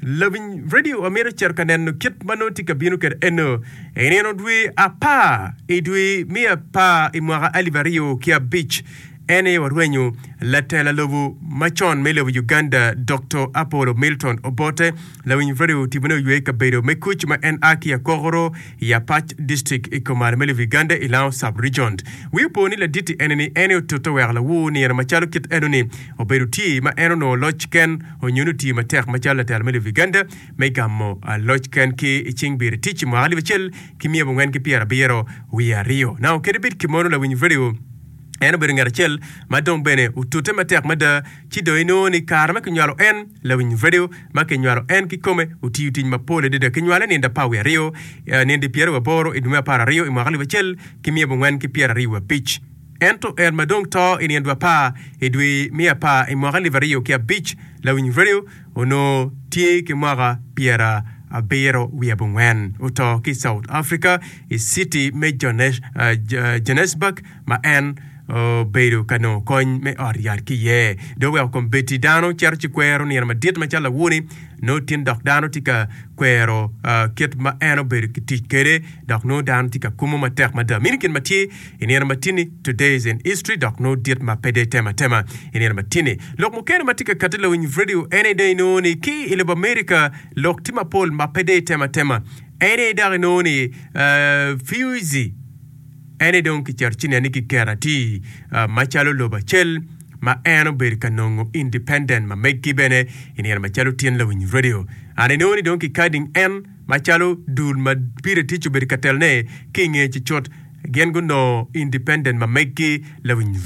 Lawiny redio amito cito ka neno kit ma nongo tye ka bino kede eno i nino dwe apar i dwe me apar i mwaka alip aryo ki abic. En aye warwenyo latela lobo macon me lobo Uganda Dokto Apollo Milton Obote. Lawiny redio tibone oywe i kabedo me kuc ma en a ki Akokoro I Apac District i Komar me Lubi Gande i Lango Sub-Region, wi opo ni laditi ene ni en aye otute wek lawu nino macalo kit eno ni obed oti ma en onongo loc ken onyo ni oti matek macalo latelo me Lubi Gande me gamo loc ken ki i cing biri tic i mwaka alip acel ki miya abongwen ki pyera abiro wiye aryo. Nang okedo bit ki mono lawiny radio en obedo ngat acel ma dong bene otute matek mada ci dong inongo ni i kare ma kinywalo en, lawiny redio ma kinywalo en kikome otiyo tic mapol adada. Kinywale ninde apar wiye aryo i ninde pyeraryo waboro i dwe me apar aryo i mwaka alip acel ki miya abongwen ki pyeraryo wabic. Ento en ma dong to i nino dwe apar i dwe me apar i mwaka alip aryo ki abic, lawiny redio onongo tye ki mwaka pyerabiro wiye abongwen. Oto ki i South Africa, i citi me Johannesburg. ma en obedo ka nongo kony me ot yat ki iye. Dong wek okombeddi dano cito ci kwero nino madit macalo awone, nongo tin dok dano tye ka kwero kit ma en obedo ki tic kwede dok nongo dano tye ka kumo matek mada. Mini gin ma tye i nino matini, Today's in History, dok nongo dit ma pe dee tema tema i nino matini. Lok mukene ma tye ka kati lawiny redio ene dong inongo ni ki i lobo America lok tye mapol ma pe dee tema tema. Ene dok inongo ni Fuse. en aye dong kicito ci nen ni kiketo atir macalo lobo acel ma en obedo ka nongo independent ma meggi bene i nino macalo tyen lawiny radio. An inongo ni dong kikading en macalo dul ma Peter Tic obedo ka telone ki i nge ci cut gin gunongo independent ma meggi lawiny